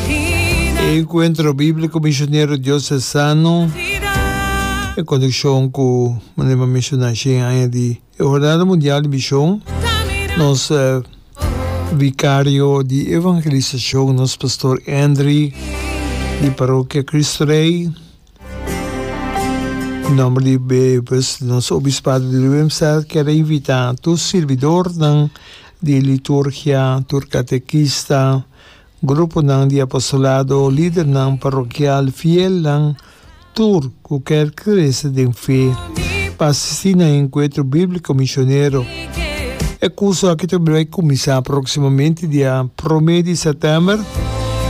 E Encuentro Bíblico Misionero Dios es Sano, en conexon cu manera bo a menciona ashe e aña di e Hornada Mundial di Mision, nos Vicario di Evangelisacion, nos Pastor Endry di Parokia Cristo Rey, na nomber di bebes di nos Obispado di Willemstad, kier a invita tur sirbidornan di liturgia, tur catequista, Gruponan di apostolado o lidernan parokial fielnan tur ku kèr krese den fe pa asistí na Enkuentro Bíbliko Misionero. E kurso akí ta bai kuminsá próksimamente dia promé di sètèmber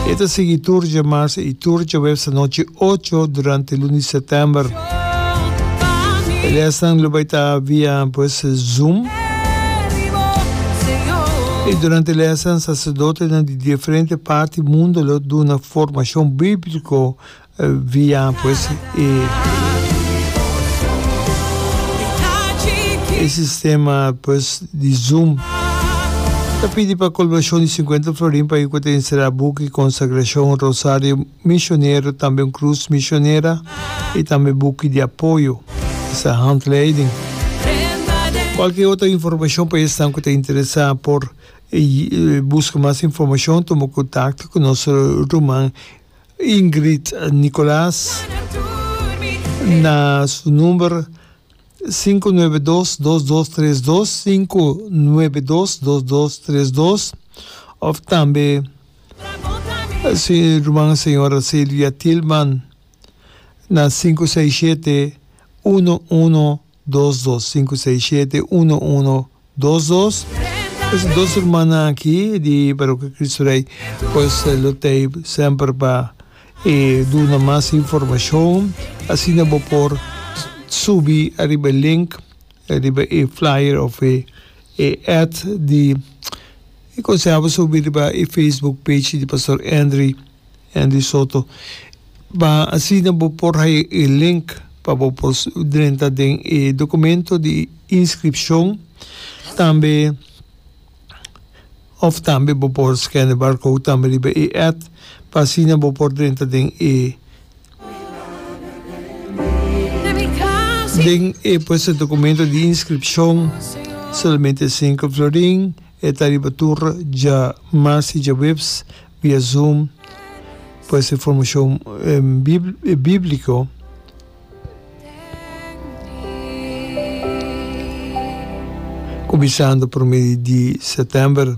i e ta sigui tur dje mars i tur dje wèpes anochi ocho durante lun di sètèmber. E lesnan lo bai ta via pues Zoom. I durante e lesnan saserdotenan di diferente parti mundo lo duna formashon bíblico via pues e e sistema pues di Zoom. Ta pidi pa colbashon di sinkuenta florin pa e kua ta enserá buki Consagracion, Rosario. Misionero tambe un cruz misionera y tambe buki di apoyo di sa handleiding. Cualkier otro informacion pa esnan cu ta interesa por busca mas informacion tuma contacto cu nos ruman Ingrid Nicolas na su number sinku nuebe dos dos dos tres dos sinku nuebe dos dos dos tres dos of tambe Su Ruman Señora Silvia Tilman na sinku seis shete, uno uno dos dos, sinku seis shete, uno uno dos dos. Esaki dos rumannan aki di Parokkia Kristu Rei pues lo tei semper pa e duna mas informashon asina bo por subi ariba e link, ariba e flyer of e. E ad di e conseho bo subi riba e Facebook page di Pastor Endry, Endry Soto. Ma asina bo por haya e link pa bo por drenta den e documento di inscripcion. Tambe. Of tambe bo por scan e barcode tambe riba e add pa asina bo por drenta den e Den e pues e documento di inscripcion solamente cinco florin e ta riba tur dja mas y dja webs via zoom pues e formacion biblico. Ku bisando prome di di September.